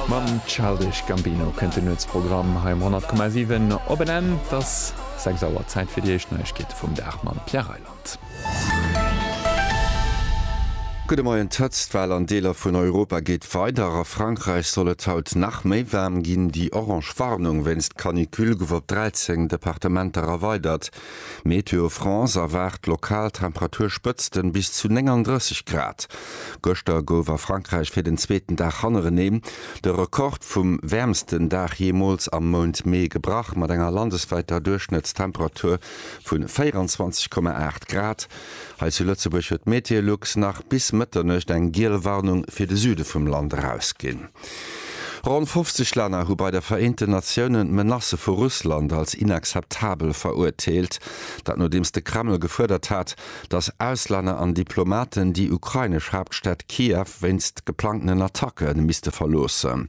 Mam Childish Gambino kënnt den Nuetsprogramm hei um 100,7 op en Enn. Et ass 6 Auer, Zäit fir déi éischt Neiegkeete vum Dag mam Pierre Reyland. Gudde Moien, D'Hëtztwell an Deeler vun Europa geet weider. A Frankräich soll et haut nach méi waarm ginn. Déi orange Warnung wéinst Canicule gouf op 13 Departementer erweidert. Météo France erwaart lokal Temperaturspëtzten bis zu 39 Grad. Gëschter gouf a Frankräich fir den zweeten Dag hannerenee de Rekord vum wäermsten Dag jeemools am Mount Mee gebrach, mat enger landeswäiter Duerchschnëttstemperatur vu 24,8 Grad. Hei zu Lëtzebuerg huet Meteolux nach bis Mëtternuecht eng giel Warnung fir de Süde vum Land erausginn. Ronn 50 Länner hu bei de Vereenten Natiounen d'Menacë vu Russland als inakzeptabel verurteelt. Dat nodeems de Kreml gefuerdert hat, datt Auslänner an Diplomaten déi ukrainesch Haaptstad Kiew wéinst geplangtenen Attacke misste verloossen.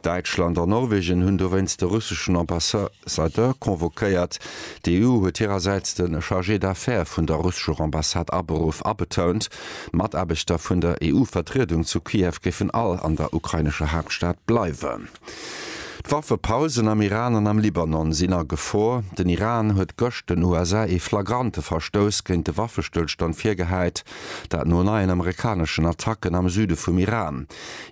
Däitschland an Norwegen hunn dowéinst de russeschen Ambassadeur convoquéiert. D'EU huet hirersäits de Chargé d'affaires vun der russescher Ambassade aberuff a betount, D'Mataarbechter vun der EU-Vertriedung zu Kiew géifen all an der ukrainescher Haaptstad bleiwen. D'Waffepausen am Iran an am Libanon sinn a Gefor. Den Iran huet gëscht den USA ee flagrante Verstouss géint de Waffestëllstand virgehäit, dat no neien amerikaneschen Attacken am Süde vum Iran.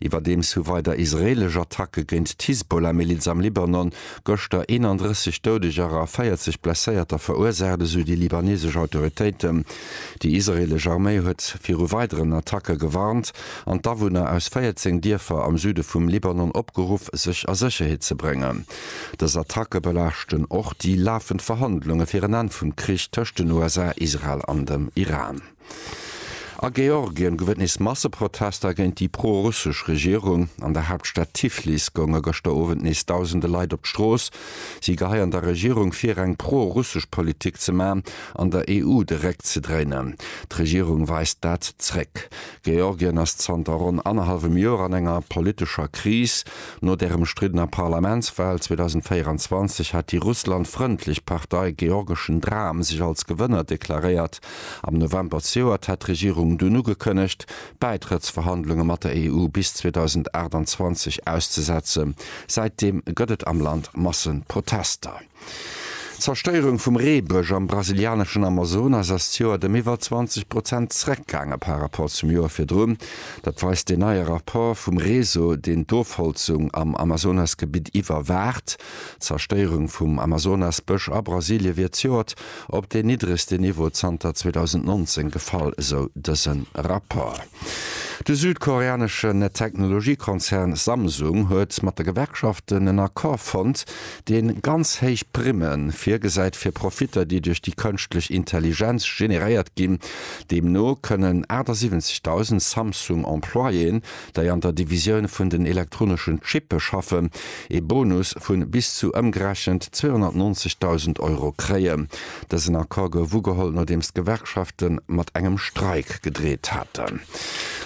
Iwwerdeems hu weider israeelesch Attacke géint d'Hisbollah-Miliz am Libanon gëschter 31 Doudeger a 40 Blesséierter verursaacht, esou déi libanesesch Autoritéiten. Déi israeelesch Arméi huet viru weideren Attacke gewarnt an d'Awunner aus 14 Dierfer am Süde vum Libanon opgeruff, sech a Sécherheet ze bréngen. Dës Attacke belaaschten och déi lafend Verhandlunge fir en Enn vum Krich tëscht den USA, Israel an dem Iran. A Georgien gouf et nees Masseprotester géint déi pro-russesch Regierung. An der Haaptstad Tiflis gounge gëschter Owend nees dausende Leit op d'Strooss. Si geheien der Regierung vir, eng pro-russesch Politik ze man. an der EU de Réck ze dréinen. D'Regierung weist dat zréck. Georgien ass zanter ronn annerhallwem Joer an enger politescher Kris. No der ëmstriddener Parlamentswal 2024 hat déi Russland-frëndlech Partei Georgeschen Dram sech als Gewënner deklaréiert. Am November zejoert hat d'Regierung dunn ugekënnegt, d'Bäitrëttsverhandlunge mat der EU bis 2028 auszesetzen. Säitdeem gëtt et am Land Masseprotester. D'Zerstéierung vum Reebësch am brasilianeschen Amazonas ass d'Joert ëm iwwer 20 Prozent zeréckgaange par Rapport zum Joer virdrun. Dat weist deen neie Rapport vum Réseau, deen d'Ofholzung am Amazonasgebitt iwwerwaacht. D'Zerstéierung vum Amazonasbësch a Brasilie wier d'Joert op deen niddregste Niveau zanter 2019 gefall, esou dëse Rapport. De südkoreaneschen Technologiekonzern Samsung huet mat de Gewerkschaften en Accord fonnt, deen ganz héich Primme virgesäit fir Profitter, déi duerch déi Kënschtlech Intelligenz generéiert ginn. Deemno kënnen 78.000 Samsung-Employéen, dei an der Divisioun vun den elektroneschen Chippe schaffen, ee Bonus vu bis zu ëmgerechent 290.000 Euro kréien. Dësen Accord gouf ugeholl, nodeems d'Gewerkschafte mat engem Streik gedreet haten.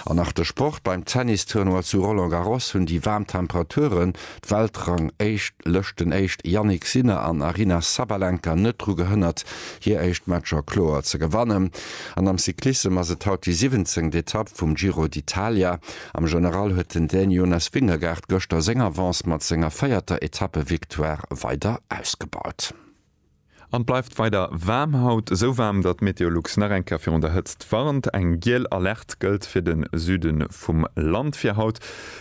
An nach de Sport, Beim Tennis-Tournoi zu Roland Garros hunn déi waarm Temperature d'Weltrang éischt Lëschten éischt Jannik Sinner an Aryna Sabalenka net dru gehënnert hir éischt Matcher kloer ze gewannen. An am Cyclissem ass et haut déi siwwenzéngt Etapp vum Giro d'Italia. Am General huet den Dän Jonas Vingegaard gëschter seng Avance mat senger véierter Etappevictoire weider ausgebaut. An bleift weider waarm, haut esou waarm, datt Meteolux nach eng Kéier virun der Hëtzt warnt. Eng giel Alerte gëllt fir de Süde vum Land fir haut.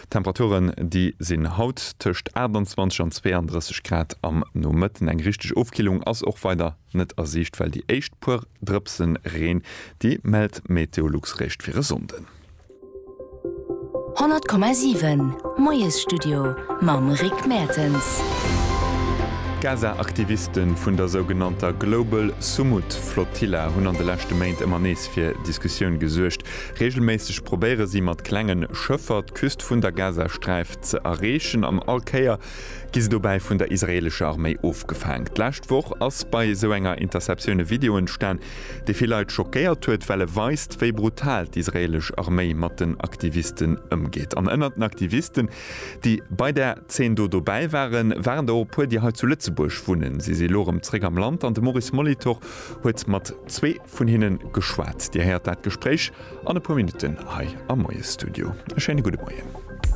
Temperaturen déi sinn haut tëscht 28 an 32 Grad am Nomëtten. Eng richteg Ofkillung ass och weider net a Siicht, well déi éischt puer Drëpse Reen, déi mellt Meteolux réischt fir e Sonnden. 100,7 Moiesstudio mam Rick Mertens. D'Gaza-Aktiviste vun der sougenannter Global Sumud Flotilla hunn an de leschte Méint ëmmer nees fir Diskussioun gesuergt. Reegelméisseg probéiere si mat klenge Schëffer d'Küst vun der Gazasträif ze erreechen an all Kéier gi se dobäi vun der israeelescher Arméi ofgefaang. D'lescht Woch ass bei esou enger Interceptioun e Video entstan, dee vill Leit schockéiert huet, well e weist, wéi brutal d'israelesch Arméi mat den Aktivisten ëmgeet. An ënnert den Aktivisten, déi bei där Zeen do dobäi waren, waren der och e puer, déi hei zu Lëtzebuerg wunnen. Si si elo erëm zréck am Land an de Maurice Molitor huet mat zwee vun hinne geschwat. Dir héiert dat Gespréich an e puer Minutten hei am Moiesstudio. E schéine gudde Moien.